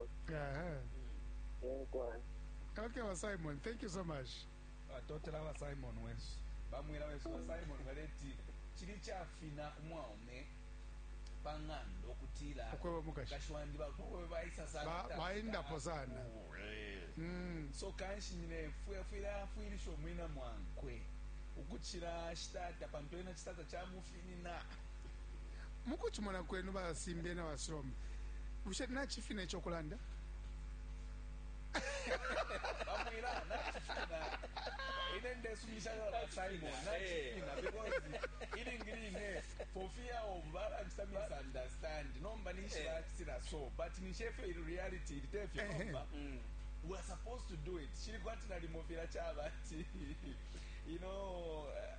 Aha. Inkwai. Okay, ba Simon, thank you so much. batotela ba simon wesu bamwela wesu ba simon baleti chili chafina umwaume pang'anda okutila Okweba mukashi. mukashi wandi bakowe baisa sana Ba- kutasika. baendapo sana. Oh, eh. Mm. so kanshi nyine fwe- fwile afwilisha omwina mwankwe ukuchila shitata pantu ena chitata chamufi Mukucimona kwenu ba Simbye na ba Slom, bushe nacifina ico kulanda? Bamwila, nacifina. Ine ndesumisha na ba Simon, nacifina. Because ilingi line, for fear of balance to misunderstand, nomba nishi bacitila so, but nishefe ili reality, ili tefye nomba. We are supposed to do it. Shili kwati nalimo fila caba ati, you know, uh,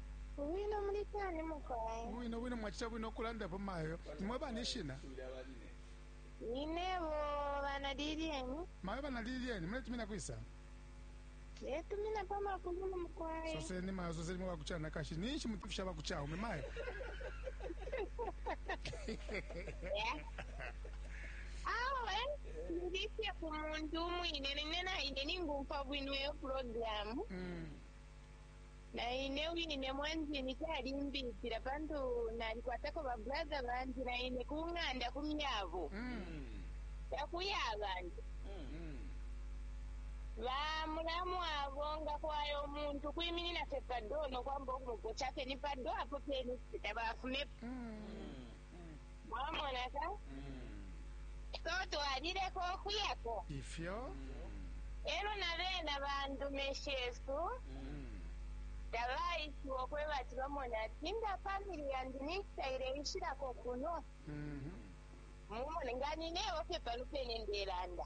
Bwino muli shani mukwai? Bwino bwino mwachita bwino ukulandapo mayo. Nimwe bani ishina? Ninebo bana Lilian. Mayo bana Lilian, muletumina kwisa? Letumina pa makulu mukwai. Soseni mayo, soseni mwe bakuchana kashi. Ninshi mutufisha bakuchaume mayo. Yeah. Awe ndifye ku muntu umwine nine naine ningumva bwino iyo programu Mm. Na ine wine ne mwandini calimbipila pantu nalikwatako ba brother bandi na ine ku ng'anda ku myabo. Takuya abantu. Ba mulamu abo nga kwaya umuntu kwiminina fye pa door no kwamba ukumuposha fye ni pa door apo pene fye tabafumepo. mwamona ka so twalileka okuyako ifyo elo na bena bandume shesu tabaishiwa okweba ati bamona ati nga famili yandi nikitaile ishilako kuno mumone nga ninebo fye palupene ndelanda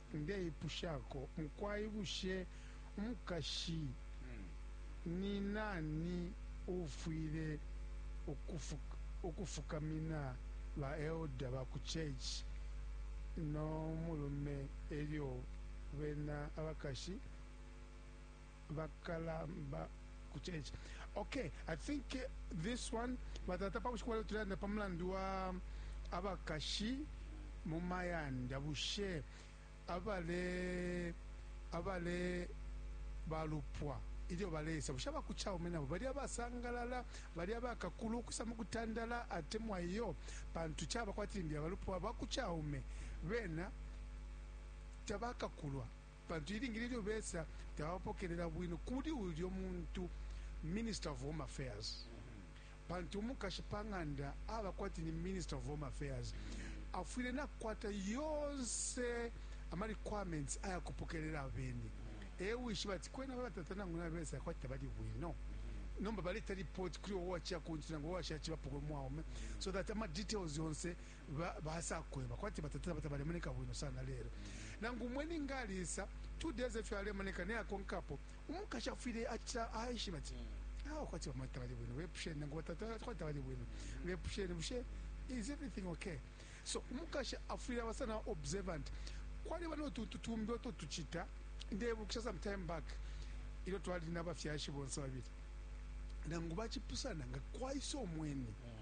ndeipushako mukwai bushe umukashi ni nani uufwile ukufukamina ba elda ba ku church no mulume elyo bena abakashi? bakalamba kuchenja okay i think this one batata pabushiku bwaleo tulelanda pa mulandu wa abakashi mu mayanda bushe abale abale balupwa ilyo balesa bushe abakuchaume nabo bali abasangalala bali abakakulu ukusa mu kutandala atemwa iyo pantu chaba kwati limbi abalupwa bakuchaume bena tabakakulwa Pantu ilingi lilyo besa tabapokelela bwino kuli ulyo muntu, Minister of Home Affairs, pantu umukashi pa ng'anda aba kwati ni Minister of Home Affairs, afwile nakwata yonse ama requirements aya kupokelela abeni. E wishiba ati kwena aba batata nangu nabesa kwati tabali bwino, nomba baleta report kuli wo waciya ku nchi nangu wo washacibapo ku mwaume, so that ama details yonse ba, basakweba kwati batatila bata balemoneka bwino sana lelo nangu umweni nga alisa two days efyo alemoneka naye akonkapo umukashi afwile aca aishiba ati mm. awa ah, kwati bamwe tabali bwino bepusheni nangu batata kwati tabali bwino mm. bepusheni bushe is everything okay so umukashi afwile aba sana observant kwaliba notuntu tumbi oto tucita ndebukisha some time back ilyo twali nabafyashi bonse babili nangu bacipusana nga kwaisa omweni mm.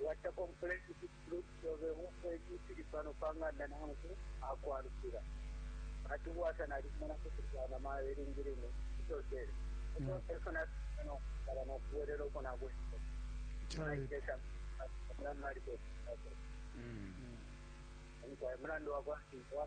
Uwacapa umfula ifiti fitulu fyobe, umfwa ifi fili pano pa nganda nangu akwalukila. Ati ubwasa nalibumona kuti bwana mayo ilingi line nsosele nsose ifyo nafikile no kwisaba no kubwelela uko nabwelele. Naikile sha mulandu nalipepele. Mukwai mulandu wakwa Lesa.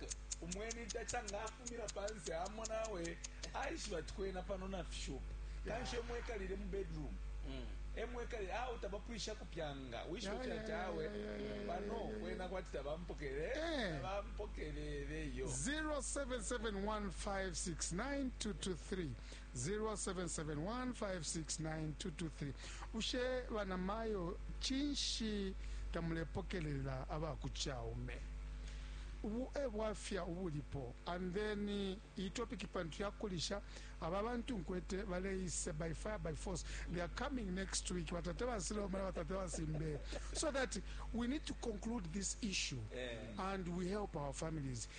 Umweni ntaca nga afumina panse amona awe aishiba ati kwena pano nafishupa kanshi emo ekalile mu bedroom emo ekalile awe tabapwisha kupyanga wishiba fye ati awe pano kwena kwati tabampokele Eh. tabampokelele yo 0771569223 0771569223 bushe banamayo cinshi tamulepokelela aba ku caume ubu ebwafya ubulipo and then iyi topic pantu yakulisha aba bantu nkwete baleise by fire by force they are coming next week batata basiloma na batata basimbe so that we need to conclude this issue and we help our families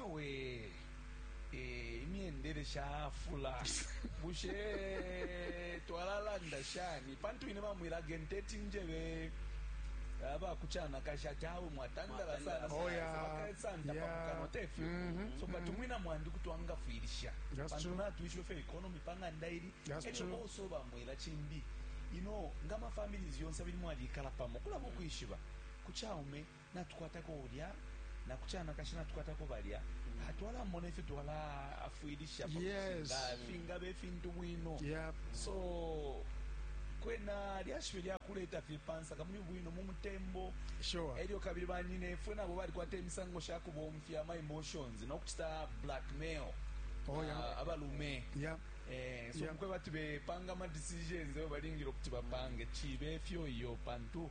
Awe ee imyendele shafula bushe ee twalalanda shani pantu ine bamwila genteti njebe abakuchanakashi ati awe mwatandala sana Oh, yeah. sabakaesanta Yeah. pamukano tefyo Mhm, so but umwina mwandi kuti wangafwilisha That's pantu true. natwishiwe fyo economy pang'anda ili That's elyo true. also bamwila chimbi ino nga mafamilies yonse abili mwalikala pamo kulaba ukwishiba kuchaume natukwatako ulya, na ku canakashi natukwatako balya, ah, twalamona ifyo twala-afwilisha pa Yes. kucinga, ah, fingaba ifintu bwino Yep. so kwena lyashibe lyakuleta fye pansa kamuli bwino mu mutembo Sure. elyo kabili banyinefwe nabo balikwata imisango sha kubomfya ama emotions nokucita blackmail Oh, yeah. ah, abalume Yep. Eh, so Yeah. mukwe bati bepanga ama decisions eyo balingile okuti bapange cibe efyo iyo pantu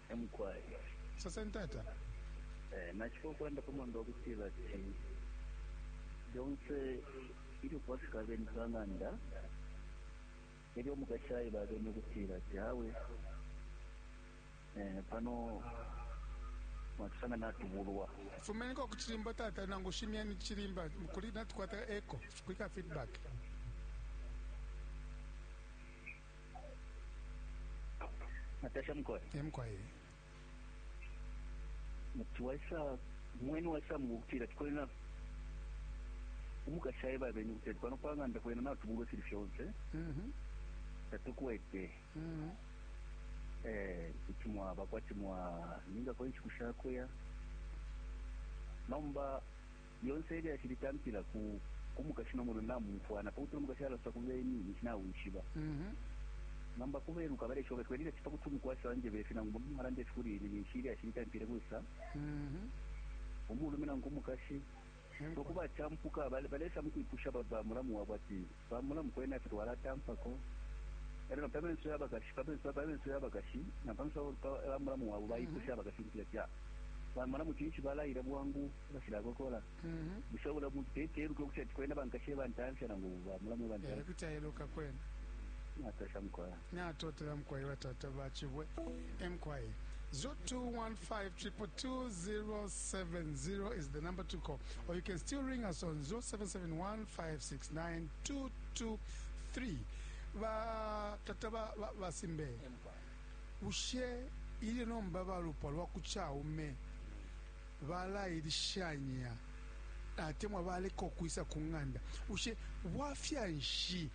emukwai soseni tata eh, nacifo ukulanda pa mwando wakutila ati lyonse ilyo kwafika abeni pa ng'anda elyo omukashi aila abeni ukutila ati awe eh, pano mwatusanga natubulwa fumeniko ku cilimba tata nangu shimyeni cilimba mukuli natukwata eco kwika feedback Natasha Mkoe. E Mkoe. Muti waisa mwenu waisa mu kutira tikwena umukashi aye babeni kuti ati pano panganda kwena natubulwe fili fyonse Mhm. tatukwete Mhm. eh kuti mwaba kwati mwa ninga kwa inshiku shakuya nomba Lyonse ilyashi litampila ku ku mukashi no mulume bamumfwana, pakutila umukashi alosa ku beni ninshi nawishiba. Nomba ku beluka baleshiba bati kwena ilyashi pakuti umukwashi anjeba ifi nangu umulume alanda ifi kuli ine ninshi ilyashi litampile kwisa? Umulume nangu umukashi. So ku bachampuka balesa mukwipusha ba mulamu wabo ati. Pa mulamu kwena ifyo twalatampako e lyo na pa menso ya bakashi, pa menso pa menso ya bakashi na pa menso pa ba mulamu wabo baipusha abakashi ukutila ca ba mulamu cinshi balaila bwangu bashilakokola? Bushe ubula muntu teti eluke ukutila ati kwena bankashi e bantamfya nangu ba mulamu e Eh, bantamfya? kuti aeluka kwena. Natasha mukwai. Natotela mukwai batata bachibwe emkwai 0215222070 is the number to call or you can still ring us on 0771569223 batata basimbe ba, ba bushe ili nomba balupwa lwa kuchaume balailishanya atemwa baleka ukwisa ku ng'anda bushe bwafya nshi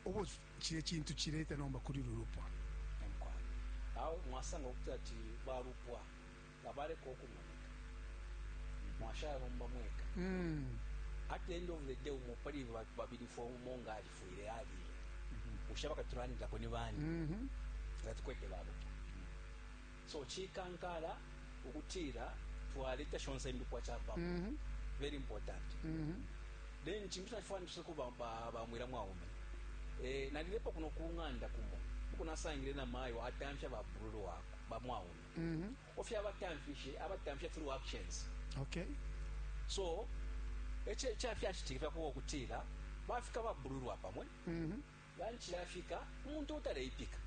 ubo cilye cintu cileta nomba kuli ulu lupwa. Ee, mukwai. Awe mwasanga ukuti ati ba lupwa tabaleka ukumoneka. Mwashala nomba mweka. Hmm. At the end of the day, umo pali babili fwe umo nga alifwile alile. Bushe abakatulandilako ni bani? Mm-hmm. Nga tukwete ba lupwa. So chikankala ukutila twaleta shonse indupwa chapamo mm -hmm. very important mm -hmm. then chintu nachifana tuseko ba, ba, ba mwila mwaume eh, nalilepo kuno kunganda kumo uko nasangile na mayo atamfya ba brulu wako ba mwaume mm -hmm. ofya abatamfishe abatamfya through actions okay so eche eche afya chitikifya kuwo kutila bafika ba brulu wapamwe mm -hmm. Lunch yafika, umuntu uutaleipika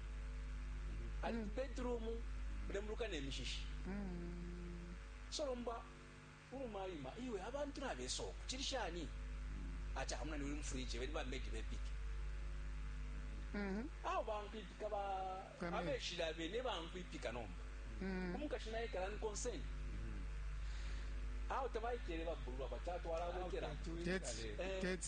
ali ku bedroom mulembuluka ne mishishi. So lomba uluma aima, iwe abantu nabesa uku, cili shani? Ati ah munani uli mu fridge, beni ba maid bepike. Awo bankwipika ba Ba maid. abeshila bene bankwipika nomba. Umukashi naye kala ni concern. Awo tabaikele babulwa batatu alabekela. Tete, Eh. tete.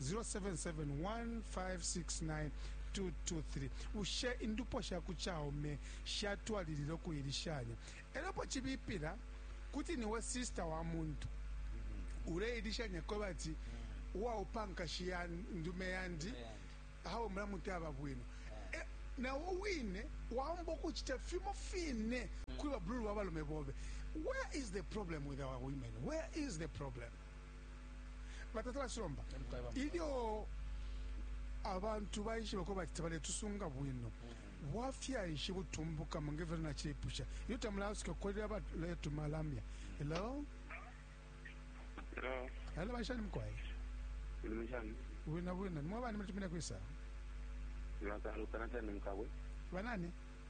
077 1569 223 Bushe indupwa sha ku caume shatwalilila ukuilishanya e lyo apo cibipila kuti ni we sista wa muntu uleilishanya kweba ati uwaupa nkashi ya ndume yandi awe mulamu taba bwino e, na wo wine waomba ukucita fimo fine kuli babululu ba balume bobe where is the problem with our women where is the problem batata basomba ilyo abantu baishiba ko bati tabaletusunga bwino bwafya nshi butumbukamo ngevyo naciipusha iyo tamulaasuka kukolera baleetuma lamya hello hello banshani mukwaye bwina bwina nimwe bani mulitumine kwisa banani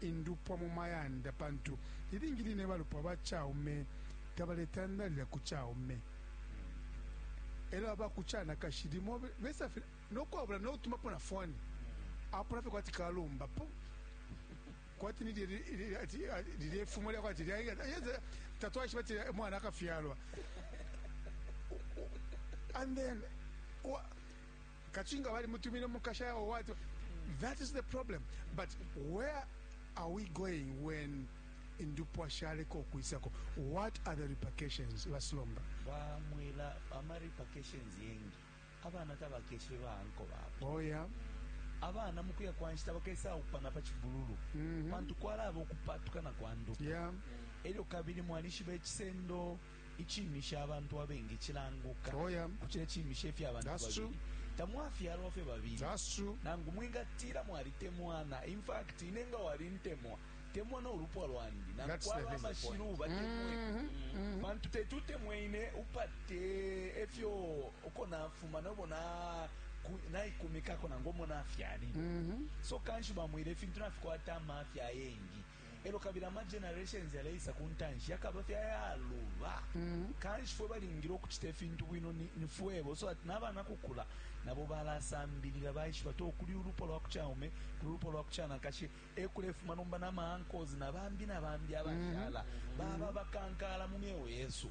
indupwa mu mayanda pantu ilingi line balupwa ba caume tabaletandalila ku caume e lyo aba ku canakashi limo besa fye no kwabula no kutumapo na foni apona fye kwati kalumbapo kwati lilye fumo lya kwati tatwaishiba ati mwana akafyalwa and then Kachinga bali mutumine mukasha or what? That is the problem. But where are we going when indupwa shaleko kuisako? What are the repercussions? Basilomba. Ba mwela ama repercussions yengi. Abana tabakeshe ba anko babo. Oh yeah. abana mukuya kwa nshita bakesa upana pa chibululu mm -hmm. pantu kwalaba okupatuka na kwanduka yeah. elyo kabili mwalishiba ekisendo iciimisha abantu abengi cilanguka Oh, yeah. kucila iciimisha ifya abantu That's true. babili tamwafyalwa fye babili That's true. nangu mwingatila mwalitemwana in fact ine nga walintemwa temwa n'olupwa lwandi nangu That's the kwaba thing. amashilu batemwe pantu teti utemwe ine upate efyo uko nafuma nobo na- ku- naikumikako nangu omo nafyalile so kanshi bamwile ifintu nafikwata amafya ayengi e lyo kabili ama generations yaleisa ku ntanshi yakaba fye ayaluba. Kanshi fwe balingile ukucita ifintu bwino ni fwebo, so that na bana kukula nabo balasambilila, baishiba ati o kuli ulupwa lwa ku caume, kuli ulupwa lwa ku canakashi, e kulefuma nomba na ma uncles na bambi na bambi abashala, baba abakankala mu myeo yesu.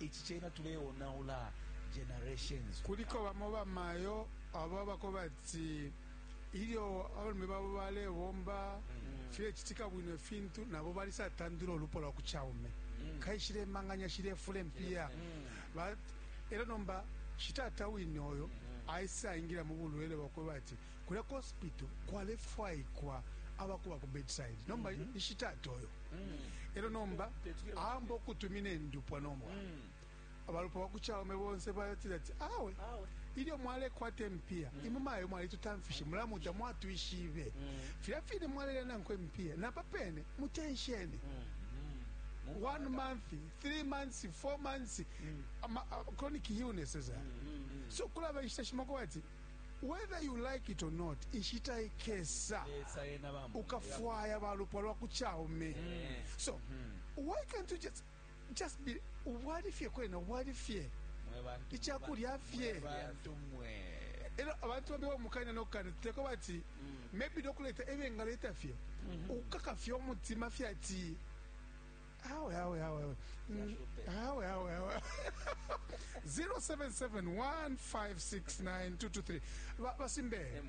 Ici cena tuleonaula generations. Kuliko bamo bamayo abo abakobati ilyo abalume babo balebomba mm. filecitika bwino ifintu nabo balisatandula ulupo lwa ku caume mm. kaishile manganya shilefula empiya mm. elo nomba shitata wine oyo aisaingila mu bulwele bwakweba ati Kulya ku hospital kwalefwaikwa abakuba ku bedside nomba mm -hmm. ishitata oyo mm. elo nomba amba okutumina endupwa nomba mm. abalupwa bakuchaume bonse batira ati awe ilyo mwalekwata empiya mm. imwe mayo mwalitutamfishe mulamuta mwatwishibe mm. filya fine mwalelya nankwe empiya napa pene mutensheni mm. mm. one month three months four months mm. ama, uh, chronic illnesses mm. mm. so kulaba inshita shimako bati Whether you like it or not, inshita ikesa ukafwaya balupwa lwa ku caume. So, why can't you just, just be, ubwali fye kwena, ubwali fye. Ichakulya fye. Elo, abantu wambi wa mukanya no kanya, tuteko wati, mm. maybe dokuleta, ewe ngaleta fye. Mm-hmm. Ukaka fye omutima fye ati, awe awe awe awe Mm, awe awe awe 0771569223 Ba- basimbe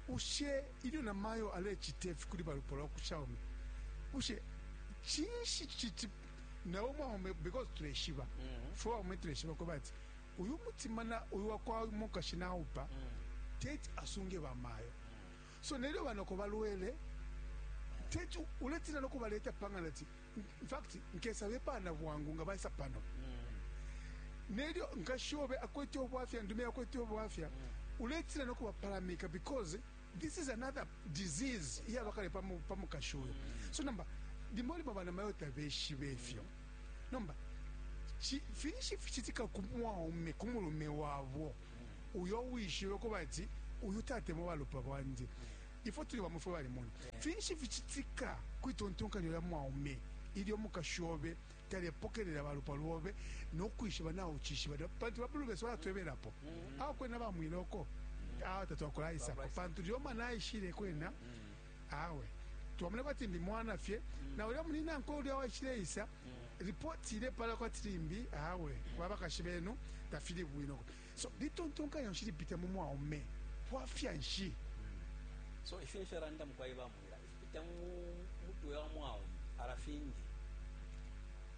ushe ilyo namayo alecita ifi kuli balupo lwa kushaume ushe cinshi citi nawe umwaume because tuleshiba fwe waume tuleshiba kweba ati uyu mutima na uyu wakwa mukashi naupa teti asunge bamayo So nelyo banoko balwele, teti uletina no kubaleta pangana ti in fact nkesa bepana bwangu nga baisa pano mm. nelyo nkashobe akwete obwafya ndume akwete obwafya mm. uletina no kubapalamika because this is another disease iya bakale pamu pamu kashoyo mm. so namba limoli mabana mayo tabeshi befyo mm. namba finishi fichitika kumwaume kumulume wabo uyo uwishiwe kubati uyu tatemwa balupwa bwandi ifwe tuli bamwe fwe balimona finshi ficitika kwitontonkanyo lya mwaume ilyo mukashi obe talepokelela balupwa lwobe nokwishiba nawe ucishiba pantu babulu besu balatwebelapo akwena bamwiloko awa tatwakulaisako pantu lyoma naishile kwena awe twamona kwati ndi mwana fye mm. na ulya muli nankwe ulya waishileisa mm. ripoti ilepala kwati limbi awe babakashi benu tafili bwino so litontonkanya nshi lipita mu mwaume bwafya nshi mm. so ifyo ifyo randa mukwai bamwira ifipita mu mutwe wa mwaume arafingi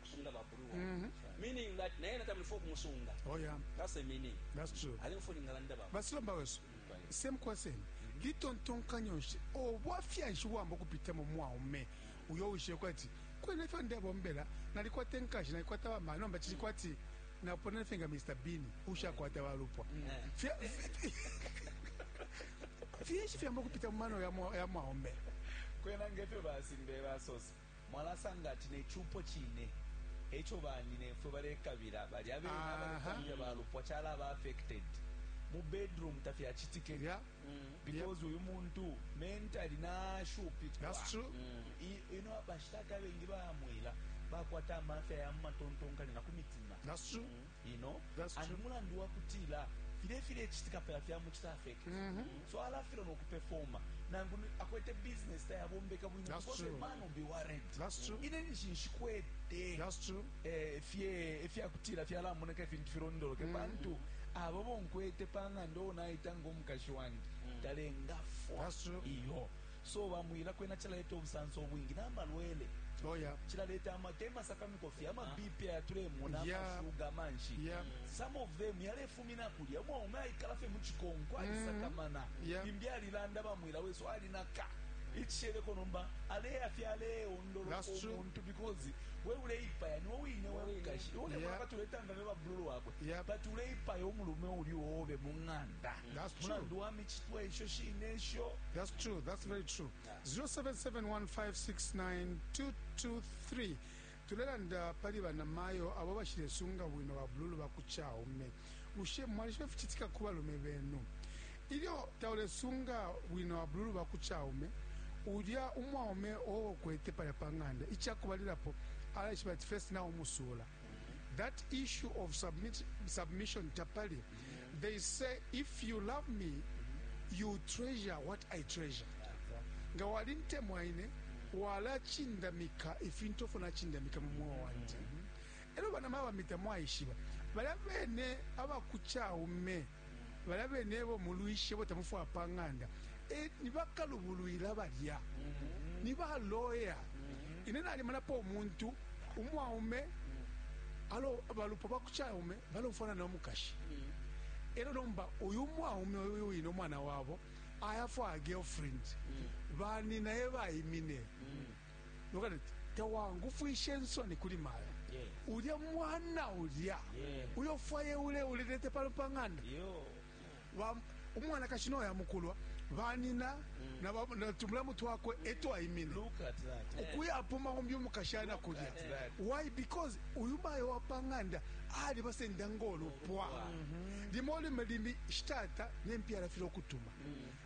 kusunga bakulu wa mm -hmm. meaning that naye natamuli fo kumusunga oh yeah that's the meaning that's true ali mfuni ngalanda baba basilomba wesu mm. same question mm -hmm. litontonkanya nshi obwafya nshi bwamba okupita mu mwaume uyo wishe kwati kwena ifyo ndebombela nalikwata enkashi nalikwata bamana nomba kili kwati mm -hmm. napona fenga Mr Bean ushakwata balupwa fyinshi fyamba kupita mu mano ya mwaombe kwena ngefyo basimbe basosa mwalasanga ati ne cupo cine e co banyinefwe balekabila. Balya bene Aha. abalekabila balupwa calaba affected. Mu bedroom tafyacitike Yeah. because uyu muntu mentally nashupikwa. That's true. I- ino bashitata abengi bamwila bakwata amafya ya mumatontonkanya na ku mitima That's true. you know and mulandu wa kutila file file chitika pela fya mu chita fake mm -hmm. so ala filo no kuperforma nangu akwete business ta yabombeka bwino that's true man will be worried that's true ine ni shinshikwete that's true eh fye eh, fya kutila fya la moneka ifintu firondoloke mm -hmm. bantu abo bonkwete panga ndo naita ngo mukashi wandi mm -hmm. talenga fo that's true iyo So ba mwila kwena cilaleta ubusanso ubwingi nama lwele. Oh yeah. Cilaleta ama tema sakamiko fye ama ah. BP ya tulemona yeah. ama sugar manshi. Yeah. Some of them yalefumina kulya mwa ume aikala fye mu chikonko ali mm. sakamana. Yeah. Bimbi alilanda ba mwila weso ali naka. Ichishele konomba ale ya fye ale ondoro That's true. Omuntu because we ule ipa ya ni wewe ine wewe kashi. Ule yeah. mwaka tuleta ngame ba blulu wako. Yeah. But ule ipa ya umulume uli obe munganda. mulandu wa micitwe isho shine isho. That's true. That's very true. 0771569223 tulelanda pali banamayo abo bashilesunga bwino babululu ba ku caume bushe mwalishiba ificitika ku balume benu ilyo taulesunga bwino babululu ba ku caume ulya umwaume owo ukwete palya pa ng'anda ica kubalilapo alaishiba ati fesi naumusuula that issue of submit, submission tapali they say if you love me you treasure what i treasure nga walintemwa ine walachindamika ifintu ofo nachindamika mu mwoyo wanje elo bana mabamita mwaishiba balya bene abakuchaume balya bene ebo mulwishe bo tamufwaya pa ng'anda e, ni bakalubulwila balya mm-hmm. ni ba loya mm-hmm. ine nalimonapo umuntu umwaume mm-hmm. alo balupwa bakucaume balofwana no mukashi elo nomba uyu mwaume uyu wine umwana wabo ayafwaya girlfriend baninaye bayimine tawangufwishe nsoni kuli mayo ulya mwana ulya uyo fwaye ule ulilete palo pa ng'anda umwanakashi noya mukulwa banina mm. na tumulamu twakwe etwaimine ukuyapuma umbi umukashana kulya why because uyu mayo wa pa ng'anda ali basenda ngolupwa mm-hmm. limo lime limi shitata nempyala file okutuma mm.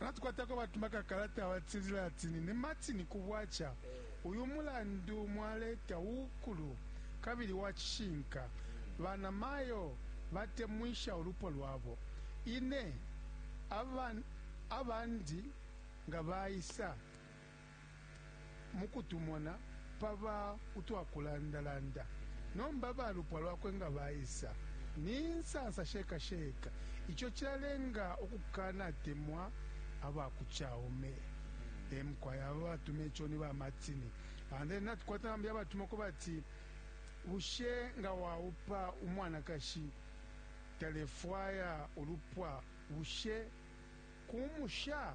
Natukwatako batuma ka kalata abatila ati nine Martin ku bwacha. Uyu mulandu mwaleta uukulu kabili wa chishinka. Bana mayo batemwisha ulupwa lwabo. Ine, aban, abandi nga baisa. mu kutumona pa ba utwa kulandalanda. Nomba balupwa lwakwe nga baisa, ni nsansa sheka sheka. Ico cilalenga ukukanatemwa aba ku Chaume. E mukwai aba batuma ico ni ba Martini. And then natukwata bambi abatuma uko bati, Bushe nga waupa umwanakashi talefwaya ulupwa, bushe kumusha?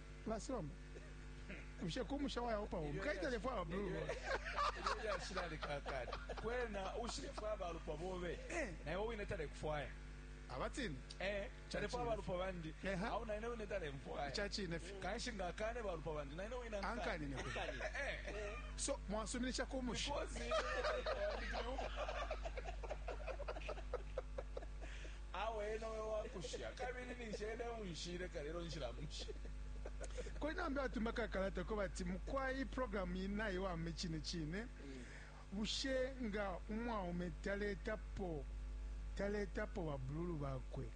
Basomba. Bushe ku musha wa Yehova umu kaita lefwa wa blue boy. Elyo yashilale kakati. Kwena ushilefwa abalupwa bobe. Eh. Na iwe wine tale kufwaya. Abatini. Eh. Chale fwa abalupwa bandi. Eha. Au na ine wine tale mfwaya. Chachi inefi. Kanshi nga kane balupwa bandi. Na ine wine ankani. Ankani inefi. Ankani. Eh. So, mwasuminisha ku musha. Mikozi. Mikozi. Awe ena uyo wakusha kabili ninshi ena eunshile kale elo nshilamusha. Kuli nambe batuma kakalata ko bati mukwai program yi naiwama icine cine bushe nga umwaume taletapo taletapo babululu bakwe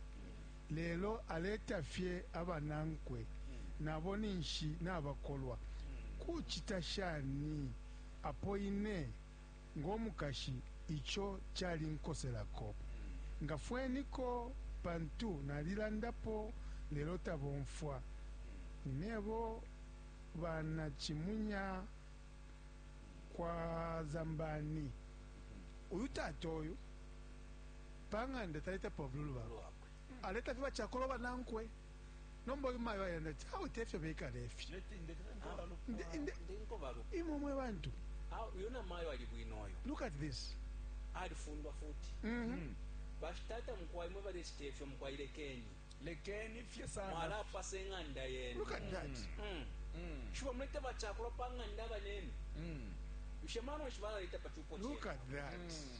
lelo aleta fye abanankwe nabo ninshi nabakolwa kucita shani apo ine ngo mukashi ico calinkoselako. Ngafweniko pantu nalilandapo lelo tabomfwa. Ninebo bana cimunya kwa Zambani. Uyu tata uyu panganda taletapo abululu bakwe, aletafye bacakolwa banankwe. nomba uyu mayo ayanda ati awe tefyo bekala ifi imwe mwe bantu uyu na mayo ali bwino uyu look at this alifundwa futi mm -hmm. bashitata mukwai mwe balechita ifyo mukwai lekeni lekeni fye sana mwalapasa eng'anda yenu look at that mm. Mm. Mm. shiba mulete bachakula pa ng'anda abanenu mm. mshemano shibalaleta pa chupo look at that mm.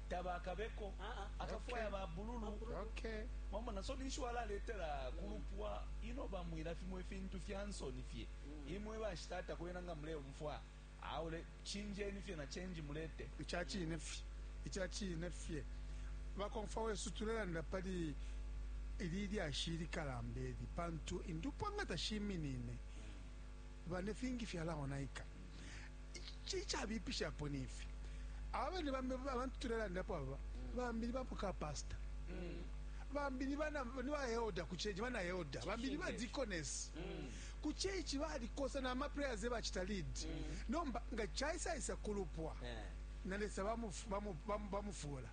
tabakabeko akafwaya ba bululu wamona so ninshi walaletela kulupwa ino bamwila fimo ifintu fya nsoni fye mm. imwe bashitata kwena nga muleumfwa aule chinjeni fye na change mulete ichachine fye ichachine fye bakomfa wesu tulelanda pali ili lyashi likalambe eli pantu indupwa nga tashiminine bane fingi fyalaonaika Icabipishapo ni ifi, aba bene bambi abantu tulelandapo aba, bambi ni ba muka pasta, bambi ni baelda ku ceici, bana elda, bambi ni badikonesi ku ceici, balikosa na ma prayers e bacita lead. Nomba nga caisaisa ku lupwa, na Lesa bamufuula.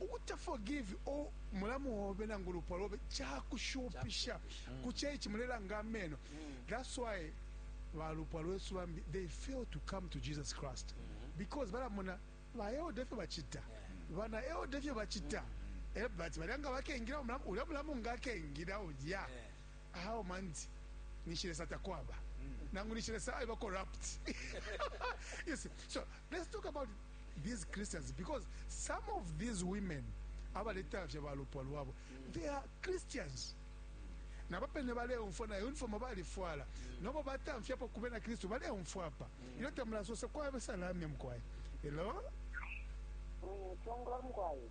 Ukuta forgive or mulamu obe nangu lupwa lobe chakushupisha mm. ku church mulelanga ameno mm. that's why balupwa lwesu bambi they fail to come to Jesus Christ mm -hmm. because balamona ba elder fyo bachita yeah. bana elder fyo bachita mm -hmm. eh but balanga bakengira ulya mulamu ngakengira ulya yeah. how manzi ninshi lesa takwaba nangu ninshi lesa aiba corrupt you see so let's talk about these christians because some of these women abaletafya balupwa lwabo they are christians nabo pene baleumfwa na uniform balifwala nobo batamfyapo kube na kristu baleumfwa apa ilyo tamulasosa kwabe salamya mukwai hello Mm, Chongo mkwai.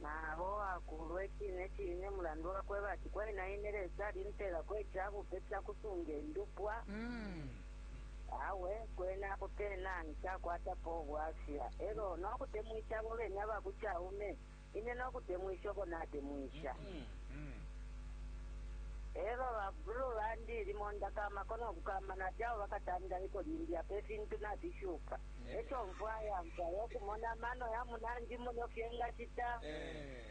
na o akuulwa icine cine, mulandu wa kweba ati, Kwena ine Lesa alimpeelako ica bupe ca kusunge ndupwa. Awe, kwena apo pena nshakwatapo ubwafya, e lyo no kutemwisha abo bene aba ku caume ine no kutemwisha uko natemwisha. E lyo ba Brew bandi, limo ndakaamakwa no kukaama nati, Awe bakatandaleko limbi, apa ifintu nafishupa. Echo mfwaya mfwaya ukumona amano ya munandi muno fye ngachita. Eh.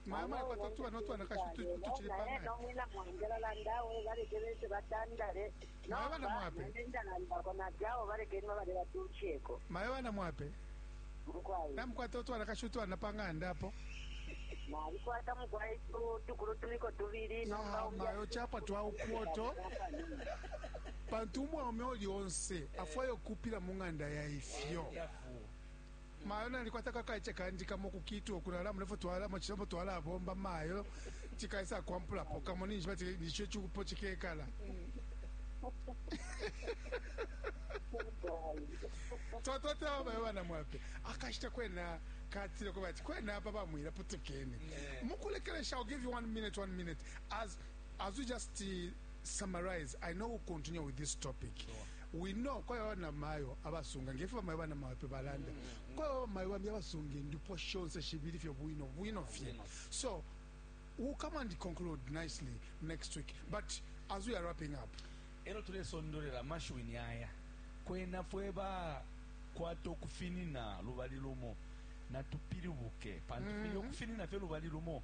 Mama ya kwata tuba no twana kashi tuchile panga. Naye no mwina mwangela landa we bale kebese batandale. Mama bana mwape. Nenda landa kona jao bale kenwa bale batucheko. Mama bana mwape. Mkwai. Na mkwata utwana kashi utwana panga andapo. nalikwata mukwai tukulu tuliko tubili nomba mayo chapa twa ukwoto Pantu umwaume uli onse afwaya ukuupila mu ng'anda ya ifyo. mayo nalikwata kakaice kandi kamo kukitwa ukulala mulefo twalamo cilambo twalabomba mayo cikaisa kwampulapo kamo ninjiba ti nico icupo cikekala twatwatela bamayo bana mwape akashita kwena katile kuba ati kwena apa bamwila putukeni mukulekelesha i'll give you one minute one minute as As you just uh, summarize, I know we'll continue with this topic. Sure. We know kwa ya wana mayo abasunga ngefe bamayo bana mayo pe balanda. Mm -hmm. Kwa ya bamayo bambi abasunga ndipo shonse shibiri fyo bwino bwino fye. So we'll come and conclude nicely next week. But as we are wrapping up, ero tulesondolera mashiwi ni aya kwena fwe ba kwata okufinina lubali lumo natupiribuke pantu mm -hmm. okufinina fye lubali lumo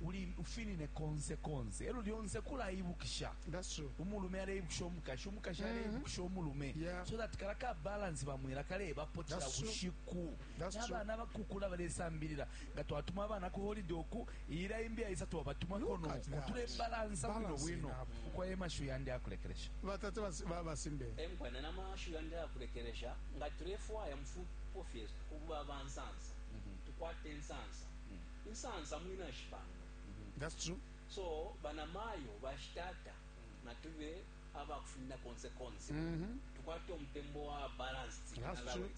uli ufinine konse konse elo lyonse kulaibukisha umulume aleibukisha umukashi umukashi mm-hmm. aleibukisha umulume yeah. so that kala ka balance bamwela kalebapo cila bushiku nabana bakukula balesambilila nga twatuma abana ku holiday oku iyila imbi aisa twabatumako noku tulebalansa bwino bwino ukwaye mashu yandi akulekelesha batata babasimbe emkwana na mashu yandi akulekelesha nga tulefwaya mufupo fyesu kuba bansansa mm-hmm. tukwate nsansa insansa mwina shipanga that's true so bana mayo bashi tata natube aba kufina konse konse mm -hmm. tukwate umtembo wa balanced that's true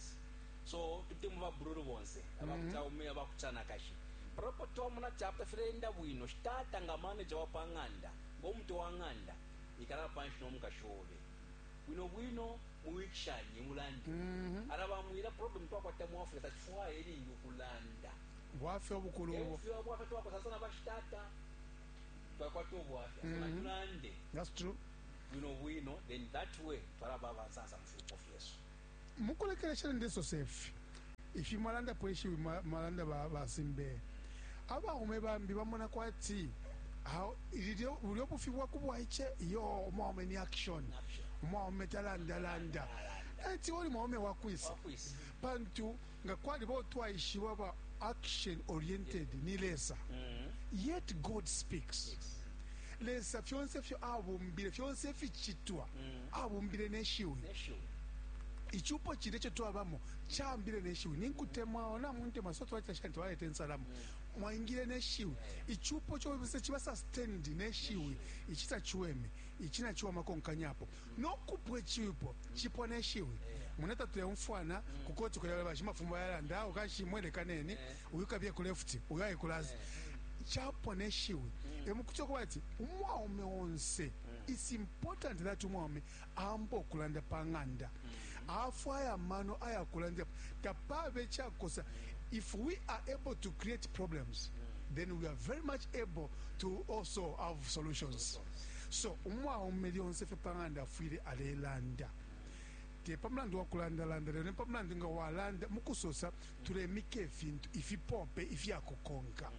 so tute muba bruru bonse mm -hmm. abakuta ume abakuta nakashi propo to muna chapter frenda bwino shitata nga manager wa panganda ngo mtu wa nganda ikala panshi no mukashobe bwino bwino muwikishanye mulande mm -hmm. arabamwira problem twakwata mu africa tachifwaye lingi ukulanda Bwafya ubukulu ubo. Eufyo ubwafya twakwata sana bashi tata. Twakwata ubwafya so natulande. That's true. Bwino bwino then that way twalaba abansansa mufyupo fyesu. Mukulekelesha ndesose ifi. Ifi mwalanda po ishiwi mwalanda ba ba Simbeye. Abaume bambi bamona kwati aho ilyo bulyo bufi bwa kubwaiche yo umwaume ni action. Umwaume talanda landa. Eti oli mwaume wakwisa. Pantu nga kwaliba utwaishiba ba action oriented ni lesa mm. yet god speaks yes. lesa fyonse fyo abumbile fyonse ificitwa mm. abumbile neshiwi icupo cine co twabamo cambile neshiwi ninkutemwa ona muntema so twacita shani twaleta ensalamu mm. mwaingile neshiwi icupo cobese ciba sustained neshiwi ici taciweme ici naciwama konkanyapo nokupwe cipo cipwa ne shiwi mune tatuleumfwana ku koti kulya bali bashimafumu bayalanda awo kanshi imwe lekaneni uyu kabiye ku left uyu aye ku last capwa ne shiwi emukuti okuba ati umwaume onse it's important that umwaume aamba okulanda pa ng'anda afwaya amano ayakulanda tapabe cakosa if we are able to create problems then we are very much able to also have solutions So umwaume lyonse fye pa ng'anda afwile alelanda te pa mulandu wa kulandalanda lelo ni pa mulandu nga walanda mu kusosa tulemika ifintu ifipope ifya kukonka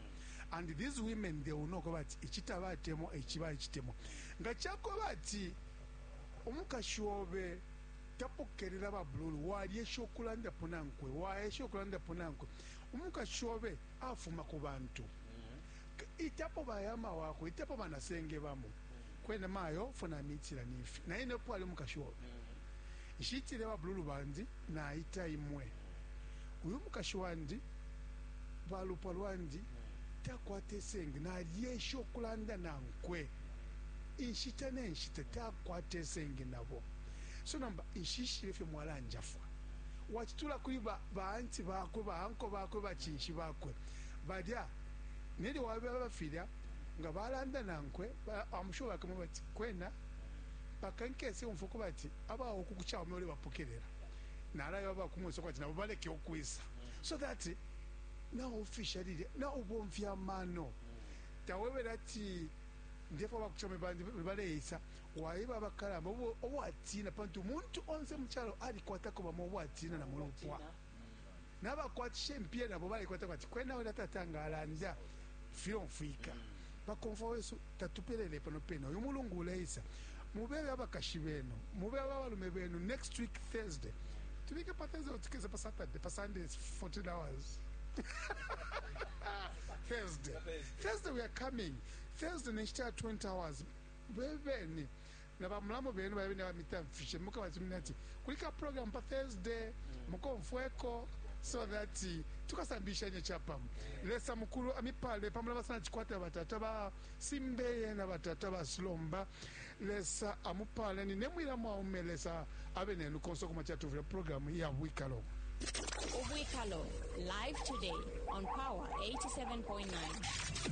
and these women they will know ko bati ici tabatemwa ici baicitemo nga cako bati umukashi obe tapokelela babululu walyesha ukulandapo nankwe waesha ukulandapo nankwe umukashi obe afuma ku bantu itapo ba yama wakwe itapo bana senge bamo kwena mayo fo na mitila nifi na ine pwali mukashi obe nshitile ba blulu bandi na ita imwe uyu mukashi wandi balupwa lwandi takwate senge na lyesha okulanda na nkwe inshita ne nshita takwate senge nabo so namba inshishile fyo mwalanjafwa wachitula kuli ba ba anti bakwe ba anko bakwe ba chinshi bakwe balya Nelyo wabeba filya nga balanda nankwe, I'm sure bakamweba ati, Kwena mpaka nkese umfwa kubati aba uku ku Chaume ulebapokelela, nalaeba aba ku Mweso kubati nabo baleke ukwisa, so that naufisha lilya, naubomfya amano. Tawebele ati, Ndefwaya aba ku Chaume bandi baleisa. Waeba abakalamba abo watiina, pantu umuntu onse mu calo alikwatako bamo abo atiina na mu lupwa. nabakwatisha impiya nabo balikwata kwati kwena ulya tata nga alanda filomfwika bakomfwa wesu tatupelele pano pena uyu mulungu uleisa mubebe abakashi benu mubebe abalume benu next week thursday tubike pa thursday or tukeze pa saturday pa sunday is 14 hours thursday thursday we are coming thursday nenshita ya 20 hours bebeni na ba mulamu benu balya bene abamitamfishe mukabatumine ati kuli ka program pa Thursday mukomfweko so that tukasambilishanye capamo. Lesa mukulu amipale pa mulaba sana cikwata batata ba Simbeye na batata ba Sulomba. Lesa amupale nine mwila mwaume Lesa abe nenu konse uko mwacila tuvile program ya bwikalo. Ubwikalo live today on Power 87.9.